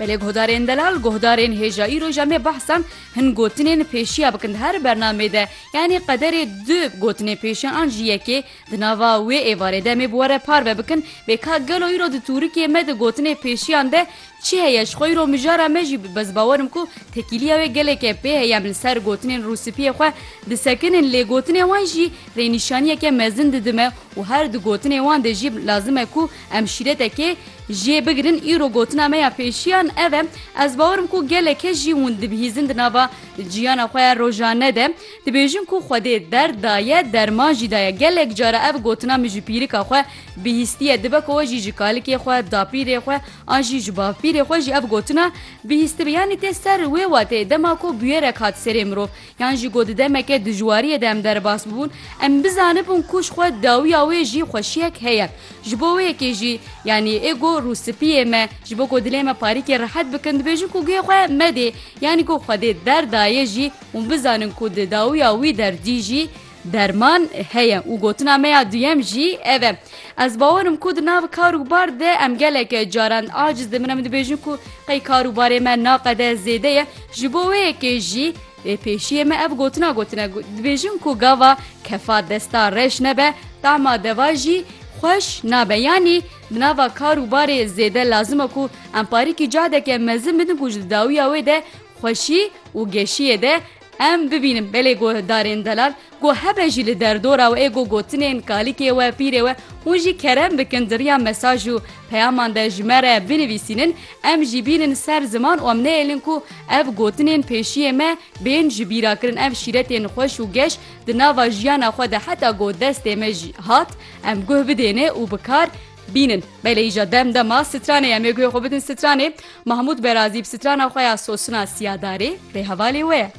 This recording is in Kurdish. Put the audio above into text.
Belê guhdarên delal guhdarên hêjayî roja me behsan hin gotinên pêşiya bikin her bernamê de yanî qederê du gotinê pêşe an ji yekê di nava wê êvarê de me bi were parve bikin bê ka gelo îro di tûrikê me di gotinê pêşiyan de çi heye ji xwe îro mijara me jî bez bawerim ku tekîliya wê geleke pê heye em li ser gotinên rûsipiyê xwe disekinin lê gotinê wan jî rênîşaniyeke mezin didime û her di gotinê wan de jî lazim e ku Em şîretekê jê bigirin îro gotina me ya pêşiyan ev e, ez bawerim ku gelek kes jî hûn dibihîzin di nava ciyana xwe ya rojane de, dibêjin ku Xwedê derd daye, derman jî daye, gelek cara ev gotina min ji pîrika xwe bihîstiye, dibe ku we jî ji kalikê xwe, dapîrê xwe an jî ji bavpîrê xwe jî ev gotina bihîstibe. Yanî tê ser wê wateyê dema ku bûyerek hat serê mirov, Yan jî ku di demeke dijwariyê de em derbas bûbûn, em bizanibûn ku ji xwe dawiya wê jî xweşiyek heye. Ji bo wê yekê jî, yanî ego, rûspiyê me, ji bo ku dilê me parîkê rehet bikin, dibêjin ku guhê xwe medê, yanî ku Xwedê derdayê jî hûn bizanin ku di dawiya wî der dî jî, Derman heye û gotina me ya duyem jî ev e. Ez bawer im ku di nav kar û bar de em gelek caran aciz dibin em dibêjin ku qey kar û barê me naqede zêde ye ji bo wê yekê jî Ê pêşiyê me ev gotina gotine dibêjin ku gava kefa desta reş nebe tama deva jî xweş nabe yanî di nava kar û barê zêde lazim e ku em parîkî cadeke mezin bidin ku ji di dawiya wê de xweşî û geşiyê de Em bibînin belê guhdarên delal ku hebe jî li derdora we ê ku gotinên kalikê we, pîrê we hûn jî kerem bikin di riya mesaj û peyaman de ji me re binivîsînin, em jî bînin ser ziman û em neyêlin ku ev gotinên pêşiyê me bên ji bîrakirin. Ev şîretên xweş û geş di nava jiyana xwe de heta ku destê me jî hat em guh bidêne û bi kar Bînin, belê îja dem dema stranê em ê guhê xwe bidin stranê, Mahmûd Berazî bi strana xwe ya Sosina Siyadarê rê hevalê we ye.